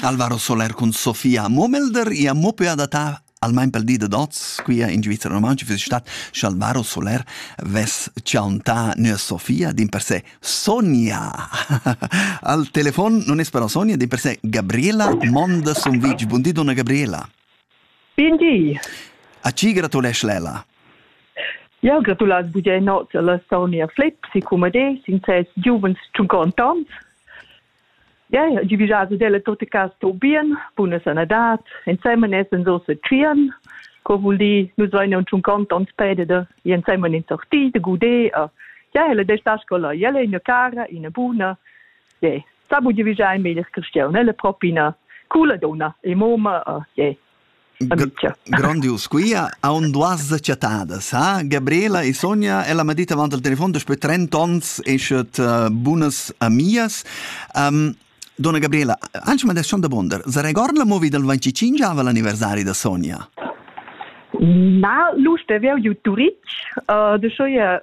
Alvaro Soler cun Sofia Momelder e a mope adattà almain pel di da dots quia in Svizzera romantica füss stat che Alvaro Soler vess chauntà nua Sofia din per se Sonia. Al telefon non es però Sonia, din per se Gabriela Monda Sumvitg. Buondì donna Gabriela. Bun di. A tgi gratulesch l'Ella? Jau gratulais Vus e nots alla Sonia Flips e cum ade sin ses giuvens tschuncontons. Ja, ja, gi vigias ad ella tot e cas sto bien, buna sanadat, ensemen essen so se tschien. Co vul di, nus vain un tschuncontons pededer, e ensemen in sorti de gude, a ja, ella de sta scola, jelle ina cara, ina buna, Ye. Sa bu divigiar il meglier cristian, el è propi ina coola donna e moma, oh, ye. Amicia. Grandius quia haun duas chattadas, ha? Gabriela e Sonja, ella m'ha dit avant al telefon daspö 30 ons eschet uh, bunas amias. Um, Donna Gabriela, anche ma descion da Bonder, se record la movie del 25 ava l'anniversari da Sonja? Na, Lust, è veo ju Turic, uh, de so je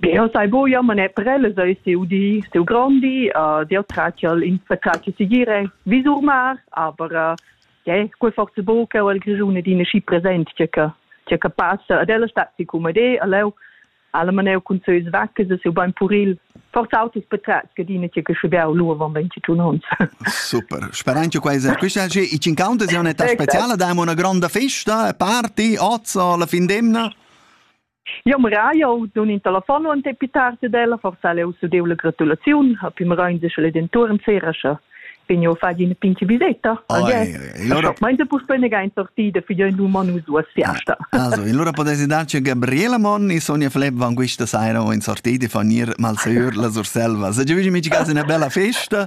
Jeu sai buca, ma ne prellas ei siu di, siu grondi, uh, jeu tratgel ins tratgel segire vi sur mar, aber uh, ja, quei forza buca el Grischun ed ina schi present che che che che passa ad ella stat si come de, a leu alla maneu cun seus vaccas e siu bein puril. Forza autos patratgs che dina che che scebiau lu avon 22 ons. Super. Speran che quei esercitar che i cincountes è un'età speciale, dai una grande festa, party, ozza alla fin d'emna. Jau mira, jau dun in telefon en pli tard ed ella, forsa leu sudeu la gratulaziun, ha pli merain de sch'el dentuorn sera scha vegno a far ina pinche viseta. Allora meinte puspei nega in sortida figlia in uman us duas fiasta. Also, allora potete darci Gabriela Mon e Sonia Flepp van questa sera o in sortida fanir mal seur la Surselva. Se giugi mici casa una bella festa